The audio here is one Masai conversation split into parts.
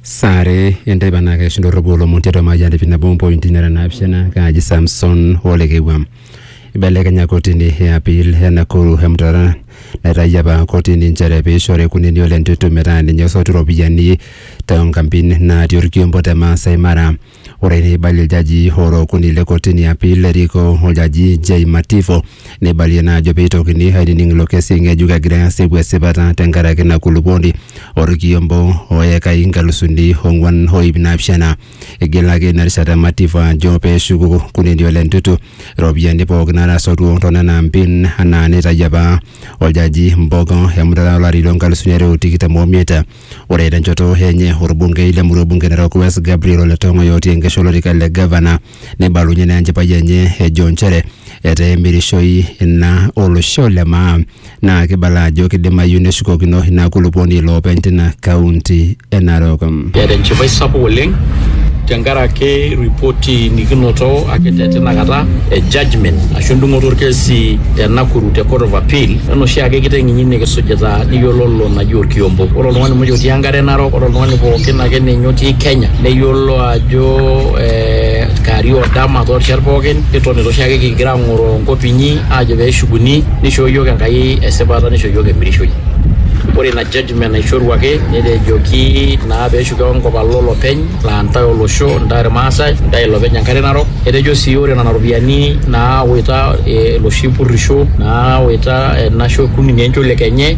saare enteipa naa keishinda orropuo lomon tiatua Mayian TV nabo ompointi nara naapishana kaaji Samson Olekewua. Ibelekenya kotini e appeal e Nakuru emutata naitayio apa kotini nchere peishori Kunini Ole Ntutu metaa ninye osotu iropiyiani toonkampin naatii orkiompo te Maasai Mara. Ore neibalie iljajii ora okuni le kotini e apil erikoo oljaji Jay Mativo neibalie naa ajo peitokini ainining ilo kesi ng'ejuk egirai asipu esipata tenkaraki ina kulupuoni orkiombo o ekai inkalusuni ong'uan o iip naapishana. Eigelaki ina rishata Mativo ajo peshuku Kunini Ole Ntutu iropiyiani pooki naatasotuo to nena ampin anaa neitayio apa oljaji Mbogo emutata o lari loo nkalusuni are o tikitam o miet. Ore tenchoto enye orbungei le murua bunge Narok West Gabriel Ole Tong'oy otii enkesha olorika le gavana neibalunye naa enchipai enye ejo nchere etaa emirishoi ina olosho le maa naa kibala ajo kidimayu neshukokino ina kulupuoni iloopeny tina kaunti e Narok. Eeta enchipai sapuk oleng tenkaraki ripoti nikinoto ake te tinakata e judgment ashu endung'oto orkesi te Nakuru te Court of Appeal ena oshiake kiteng'inyi nikisujita niyiololo eji orkiombo. Ore oltung'ani muj otii enkare narok, ore oltung'ani pookin ake ninye otii Kenya, neyiolo ajo eh, kewarie odama torishat pookin, nitonita oshiake kigira ang'oro enkop inyi, ajo peshukuni, nishoo yiok Enkai esipata, nisho yiok emirishoi. Ore ina judgment naishoruaki, netejoki naa peshuko enkop alo olopeny, la ntae olosho, ntae irmaasai, ntae ilopeny enkare narok. Etejo si ore nena ropiyiani nawaita eh, loshi purrisho, nawaita ena shorkuni nenchol ekenye,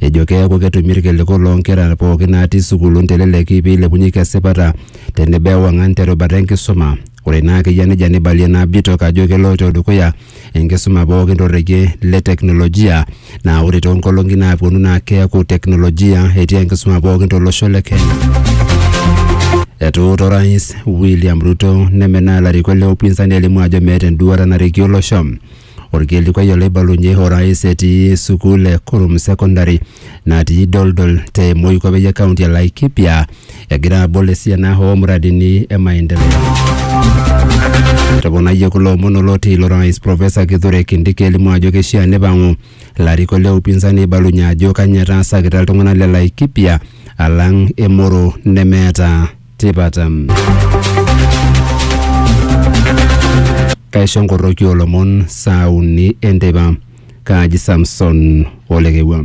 ejo keeku ketumi irkiliku loo nkera pooki naatii sukuulun teleleki peilepunyeki esipata tenebo ewang'an terubata enkisuma. Ore ina ake eyia nejia neibalie ina bitok ajo keloito dukuya enkisuma pooki torrekie le teknolojia naa ore too nkolong'i naapwonu naa keeku teknolojia etii enkisuma pooki tolosho le Kenya. Etuuta orais William Ruto nemenaa ilarikok le upinzani elimu ajo meeta enduata narikie olosho Olkilikuai olaibalunye orais etii sukuul e Kurum Secondary natii Doldol te Moikopei e kaunti e Laikipia egira abol esiana oo muradini e maendeleo. Etoponayie kulo omon oloti ilo rais Professor Kithure Kindiki elimu ajo keishaa neipang'u larikok le upinzani aibalunye ajo kanyoo etaasakita iltung'ana le Laikipia alang emoro nemeeta tipat. Kaisho nkoroki olomon saa uni enteipa kaaji Samson olekewua.